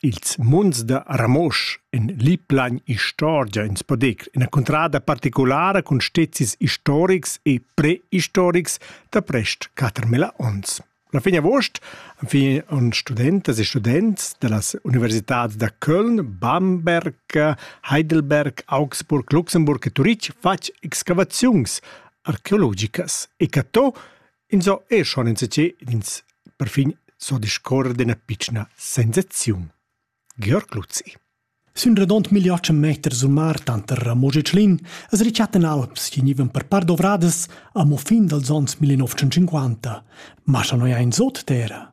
Ils munds da Ramosch en liplagn istorgia ins po dir ina cuntrada particulara cun stezis historics e prehistorics da prest 4000 onns. La fin agost han fin on studentas e students da las universitats da Köln, Bamberg, Heidelberg, Augsburg, Luxemburg e Turitg fatg excavaziuns archeologicas e catto Inso e schon insatge ins perfin so discorrer d'ina pitschna sensaziun. Georg Luzzi Sün redond milliards meter sul mar tanter Ramosch e Tschlin as richatten alps chi gnivan per part dovradas amo fin dals ons 1950. Ma scha no ja in sot terra.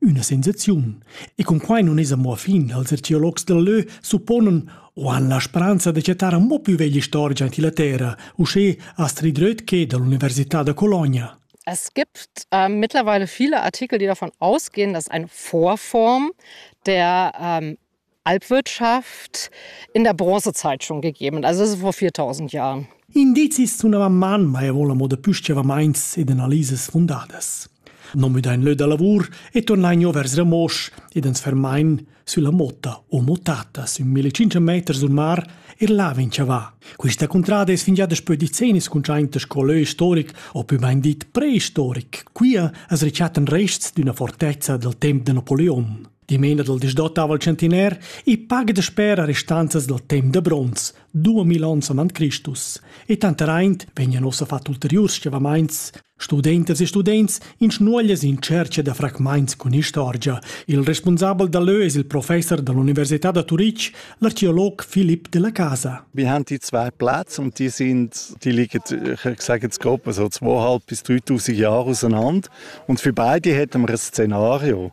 üna sensaziun. E con quai non es amo fin, als archeologs del lö supponen o han la speranza de chattar amo più veglia storia in la terra, usché Astrid Rötke dall'Università de Colonia. Es gibt äh, mittlerweile viele Artikel, die davon ausgehen, dass eine Vorform der ähm, Alpwirtschaft in der Bronzezeit schon gegeben, also das ist vor 4000 Jahren. Indizis sunava manmai vola mo da püschevamaints ed analisas fundadas. No müdain lö da lavur e tornain jo vers Ramosch ed ens fermain sülla motta o motata sün 1500 meter sul mar e là vin chavà. Quista cuntrada es fingià daspö decennis cuntschainta sco lö istoric o pü bain dit preistoric. Quia as rechattan rests d'üna fortezza dal temp da Napoleon. Dimena dal disdotava il centiner, i paga da sper a restanzas dal temp da bronz, 2000 onns avant Christus. E tanteraint vegnan ossa fat ulteriurs schevamaints, studentas e students in schnuoglias in cerca da fragmaints cun istorgia. Il responsabel da leu es il professor dall'Università da Turitg, l'archeolog Philipp della Casa. Wir haben die zwei Plätze und die sind, die liegen, ich sage jetzt grob, also 2.500 bis 3.000 Jahre auseinander. Und für beide hätten wir ein Szenario.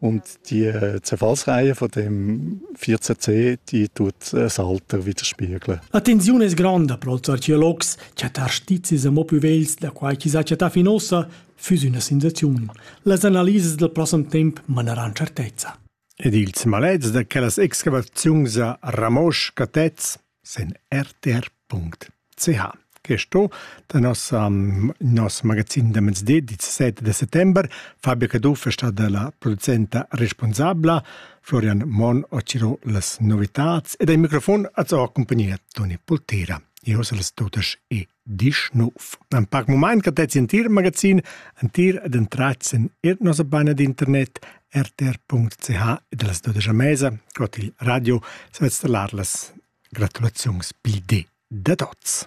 Und die äh, Zerfallsreihe von dem 14C, die tut das Alter widerspiegeln. Attenzione es grande pro els archeologs, chattar stizis mo più vegls da quai chi s'ha chattà fin ossa, füss üna sensaziun. Las analises del prossem temp maneran certezza. Ed ils maleds da quellas excavaziuns a Ramosch Catez sen rtr.ch che sto da nossa nos magazin da mezdi 17 de settember Fabio Caduff è stata la producenta responsabla Florian Mon ociro las novitats ed ai microfon az ho compagnia Toni Pultera. Io sal totas e disch nov. Ein pac mumaint che tets in tier magazin, ein tier ed entratzen ir nosa baina d'internet rtr.ch ed las dodisch a mesa, cot il radio, svetz lar las gratulaziuns pil di da tots.